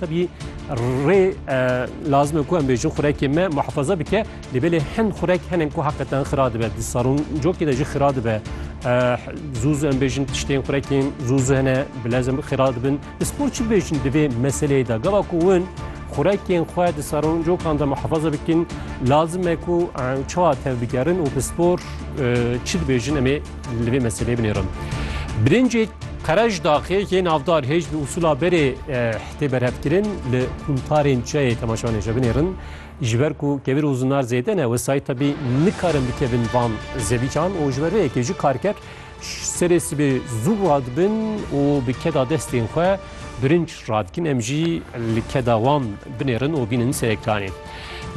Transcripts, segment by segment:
Tabii rê lazim e ku em bêjin xurekê me muhefaza bike lê belê hin xurek henen ku heqetan xira dibe di sarûn cokê de jî xira dibe zû zû em bêjin tiştên xurekên zû zû hene bilez em xira dibin di spor çi bêjin divê meseleyê de gava ku win xurekên xwe di sarûn cokan de muhefaza bikin lazim e ku çawa tev bigerin û bi spor çi dibêjin em ê Li vê meseleyê binêrin. Birincê qerej daxiyekê navdar hêj bi usula berê tê berhevkirin li kuntarên çayê temaşanê ji binêrin. Ji ber ku kevir û zinar zêde ne wesayî tebî nikarin bikevin van zevîçan û ji ber vê yekê jî karker serê sibê zû radibin û bi keda destên xwe birinc radikin em jî li keda wan binêrin û bînin serek kanê.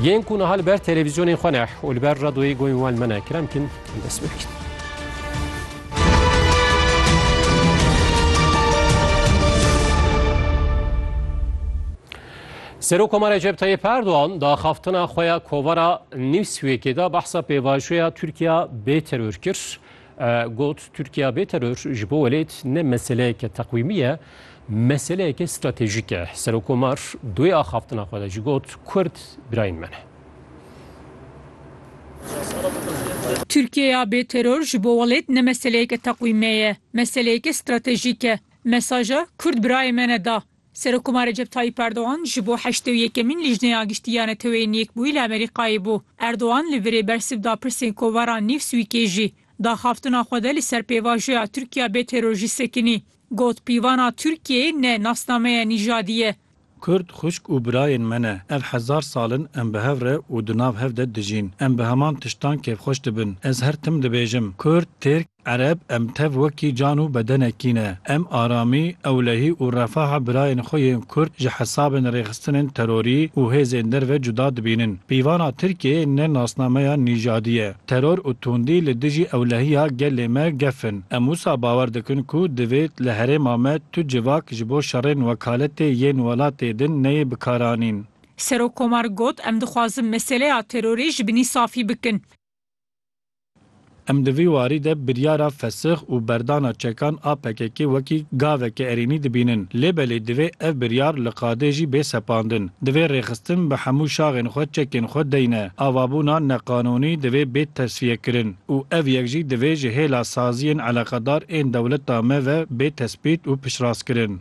Yên ku niha li ber televîzyonên xwe ne û li ber radoyê goyên wan me ne kiram kin em dest pê bikin. Serokoma Recep Tayyip Erdoğan da xaftina xwe ya kovara Newsweekê da behsa pêvajoya Tirkiya bê teror kir. Got, Tirkiya bê teror ji bo welêt ne meseleyeke teqwîmî ye, meseleyeke stratejîk e. Serokkomar duê axaftina xwe de jî got, Kurd birayên me ne. Tirkiya bê teror ji bo welêt ne meseleyeke teqwîmê ye, meseleyeke stratejîk e. Mesaja Kurd birayê me ne da. Serokwma Recep Tayyîp Erdogan ji bo heştê û yekemîn Lîjneya Giştî ya Netoyê ên Yekbûyî li Amerîkayê bû. Erdogan li virê bersîv da pirsên kovara Newsweekê jî. Daxaftina xwe de li ser pêvajoya Tirkiya bê teror jî sekinî. Got, Pîvana Tirkiyeyê ne nasnameya nîjadî ye. Kurd xwişk û birayên me ne. Ev hezar sal in em bi hev re û di nav hev de dijîn. Em bi heman tiştan kêfxweş dibin. Ez her tim dibêjim, Kurd, Tirk, Ereb, em tev wekî can û bedenekî ne. Em aramî, ewlehî û refaha birayên xwe yên Kurd ji hesabên rêxistinên terorî û hêzên derve cuda dibînin. Pîvana Tirkiyeyê ne nasnameya nîjadî ye. Teror û tundî li dijî ewlehiya gelê me gef in. Em wisa bawer dikin ku divê li herêma me tu civak ji bo şerên wekaletê yên welatê din neyê bikaranîn. Serokkomar got, Em dixwazin meseleya terorê ji binî safî bikin. Em di vî warî de biryara fesix û berdana çekan a PKK'ê wekî gaveke erênî dibînin. Lê belê divê ev biryar li qadê jî bê sepandin. Divê rêxistin bi hemû şaxên xwe çekên xwe deyne. Avabûna neqanûnî divê bê tesfiyekirin û ev yek jî divê ji hêla saziyên eleqedar ên dewleta me ve bê tespît û piştrast kirin.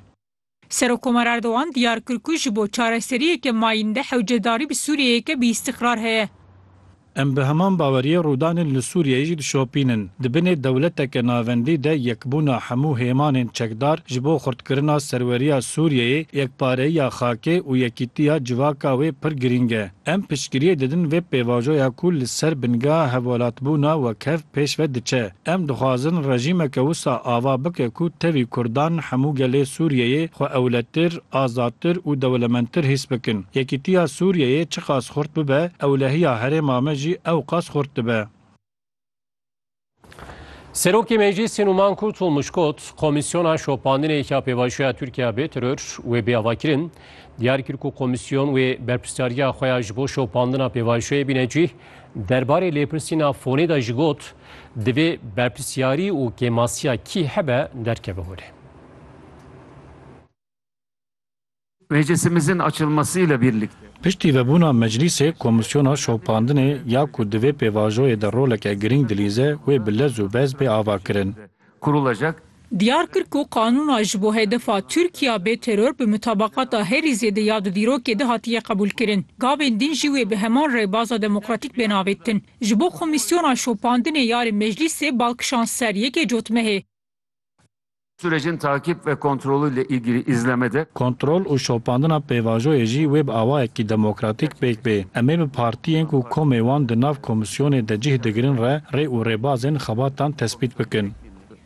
Serokkomar Erdogan diyar kir ku ji bo çareseriyeke mayînde hewcedarî bi Sûriyeyeke bi îstîqrar heye. Em bi heman baweriyê rûdanên li Sûriyeyê jî dişopînin. Di binê dewleteke navendî de yekbûna hemû hêmanên çekdar ji bo xurtkirina serweriya Sûriyeyê, yekpareyiya xakê û yekîtiya civaka wê pir girîng e. Em piştgiriyê didin vê pêvajoya ku li ser bingeha hevwelatbûna wekhev pêşve diçe. Em dixwazin rejîmeke wisa ava bike ku tevî Kurdan hemû gelê Sûriyeyê xwe ewletir, azadtir û dewlemendtir hîs bikin. Yekîtiya Sûriyeyê çiqas xurt bibe, ewlehiya herêma me jî ewqas xurt dibe. Serokê Meclîsê Nûman Kurtul Mişkot, Komîsyona Şopandinê ya Pêvajoya Tirkiya bê Teror wê bê ava kirin. Diyar kir ku komîsyon wê berpirsiyariya xwe ya ji bo şopandina pêvajoyê bîne cih. Derbarê lêpirsîna fonê de jî got, Divê berpirsyarî û kêmasiya kî hebe derkeve holê. Meclisimizin açılmasıyla birlikte. Piştî vebûna meclîsê komîsyona şopandinê ya ku divê pêvajoyê de roleke girîng dilîze wê bi lez û bez bê avakirin. kurulacak. Diyar kir ku qanûna ji bo hedefa Tirkiya bê teror bi mutabaqata herî zêde ya di dîrokê de hatiye qebûlkirin. Gavên din jî wê bi heman rêbaza demokratîk bên avêtin. Ji bo komîsyona şopandinê ya li meclîsê bal kişand ser yekê cotmehê. Sürecin takip ve kontrolî ile ilgili izleme de. Kontrol û şopandina pêvajoyê jî wê bi awayekî demokratîk pêk bê. Em ê bi partiyên ku komê wan di nav komîsyonê de cih digirin re Rê û rêbazên xebatan tespît bikin.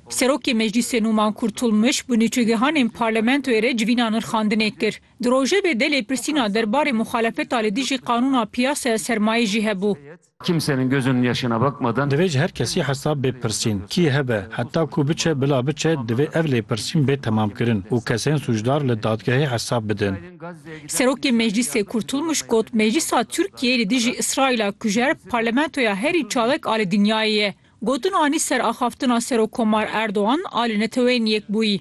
Serokê Meclîsê Nûman Kurtulmuş bi nûçegihanên parlamentoyê re civîna nirxandinê kir. Di rojevê de lêpirsîna derbarê muxalefeta li dijî qanûna piyasaya sermayê jî hebû. Kimsenin gözünün yaşına bakmadan. Divê ji her kesî hesab bê pirsîn. Kî hebe, heta ku biçe bila biçe divê ev lêpirsîn bê temamkirin û kesên sûcdar li dadgehê hesab bidin. Serokê Meclîsê Kurt Tulmuş got, Meclîsa Tirkiyeyê li dijî Îsraîla kujer parlamentoya herî çavek a li dinyayê ye. Gotin anî ser axaftina Serokkomar Erdogan a li neteweyên yekbûyî.